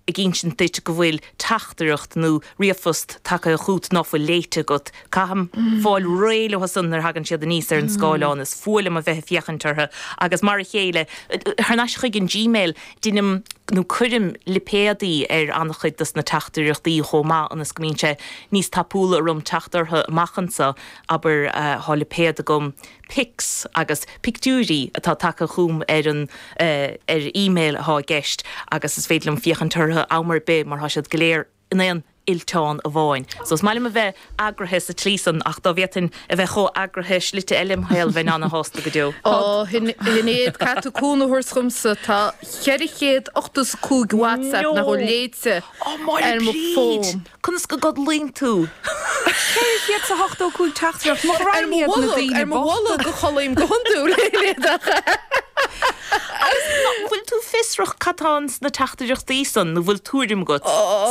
ag insint duit go bhfuil teachtaireacht nó ríomhphost tagtha chugat ná fuil léite agat. Caithim fáil réidh leo san nuair a thagann siad aníos ar an scáileán. Is fuath liom a bheith ag féachaint orthu agus mar a chéile thar n-ais chuig an Gmail. Deinim nó cuirim lipéadaí ar an-chuid dos na teachtaireachtaí chomh maith ionas go mbíonn sé níos tapúla orm teacht orthu amach anseo, abair. Tá lipéad agam pics agus pictiúirí atá tagtha chugam ar an ar email atá i gceist agus is féidir liom féachaint orthu am ar bith mar tá siad go léir in aon fhillteán amháin. So is maith liom a bheith eagraithe sa tslí san ach dá bhféadfainn a bheith chomh heagraithe i slite eile im' shaol bheinn ana-shásta go deo. Ó, Shinéad, caithfidh tú cúnamh a thabhairt dhomsa, tá 485 WhatsApp nach bhfuil léite ar mo fón. Conas go gcodlaíonn tú? 485 teachtaireacht, mo ghraidhin iad na daoine bochta! Ar mo bholg a chodlaím go hiondúil, a Shinéad. Agus an bhfuil tú fiosrach cad tá ins na teachtaireachtaí san, nó bhfuil tuairim agat?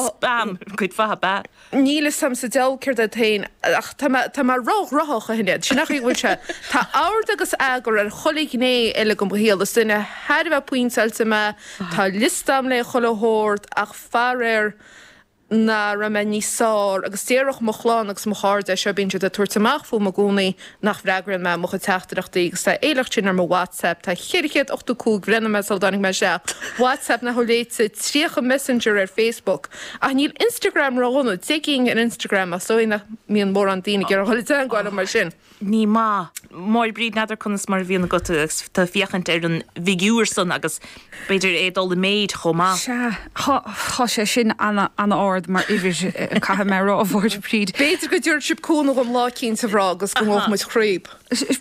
Spam, cuid mhaith, ab ea? Níl 'fhios a'm sa deabhal céard é féin, ach tá mé, tá mé ró-ghnoitheach, a Shinéad. Sin an chaoi a bhfuil sé? Tá ord agus eagar ar chuile ghné eile de mo shaol. Is duine thar a bheith pointeáilte mé, tá liosta a'm le chuile shórt, ach faraor, nach raibh mé níos fearr, agus déarfadh mo chlann agus mo chairde é seo, bíonn siad ag tabhairt amach fúm i gcónaí, nach bhfreagraíonn mé mo chuid teachtaireachtaí, agus tá a shliocht sin ar mo WhatsApp, tá 485 bhreathnaigh mé sula dtáinig mé isteach, WhatsApp nach bhfuil léite, 30 Messenger ar Facebook, ach níl Instagram ródhona, 10 gcinn ar Instagram, ach is dóigh nach mbíonn mórán daoine ag iarraidh dul i dteagmháil liom mar sin. Ní maith. Máire Bríd n'fheadar conas mar a bhíonn agat agus tú ag féachaint ar an bhfigiúr san agus b'fhéidir é ag dul i méid chomh maith. Sea. Tá sé sin an-ard mar uimhir, caithfidh mé a rá, a Mháire Bríd. B'fhéidir go dtiúrfaidh sibh cúnamh dhom lá eicínt, a mhná, agus go ngabhfaidh muid tríothu.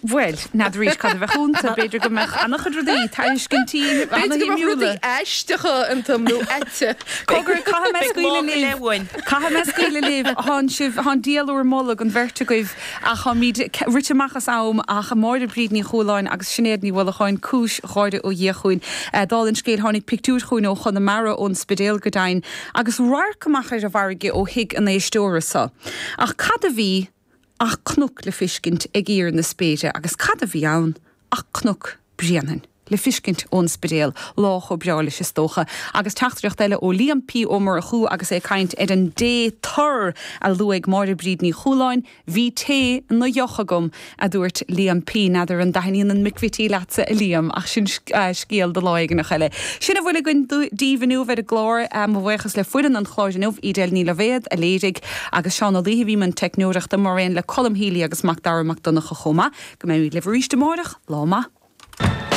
Bhuel, n'fheadar arís cad a bheadh iontu. B'fhéidir go mbeadh an-chuid rudaí, tairiscintí ana-shuimiúla. B'fhéidir go mbeadh rudaí aisteacha iontu, nó aite. Cogar, caithfidh mé scaoileadh libh. Caithfidh mé scaoileadh libh. Tánn sibh, tá an diabhal in bhur mbolg, an bheirt agaibh. Ach táimid rite amach as am, ach Máire Bríd Ní Chualáin agus Sinéad Ní Uallacháin, cúis gháire ó Dhia chugainn. Dála an scéil, tháinig pictiúir chugainn ó Chonamara, ón Spidéal go deimhin, agus radharc amach ar an bhfarraige ó thigh an éisteora seo. Ach cad a bhí ach cnoc le fiscint ag íor na spéire, agus cad a bhí ann ach Cnoc Bréanainn. le feiscint ón Spidéal, lá chomh breá leis is dócha, agus teachtaireacht eile ó Liam P. Ó Murchú agus é ag caint ar an dtae tur a luaigh Máire Bríd Ní Chualáin, Bhí tae ina dheoch agam, adúirt Liam P. N'fheadar an dtaithníonn an McVittie leatsa, a Liam, ach sin scéal do lá éigineach eile. Sin a bhfuil againn daoibh inniu ar an gclár. Mo bhuíochas le foireann an chláir inniu, Edel Ní Loibhéad, a léirigh, agus Seán Ó Laoithe, a bhí i mbun teicneoireachta, mar aon le Colm Healy agus Macdara Mac Donncha chomh maith. Go mbeimid libh arís amárach. Lá maith.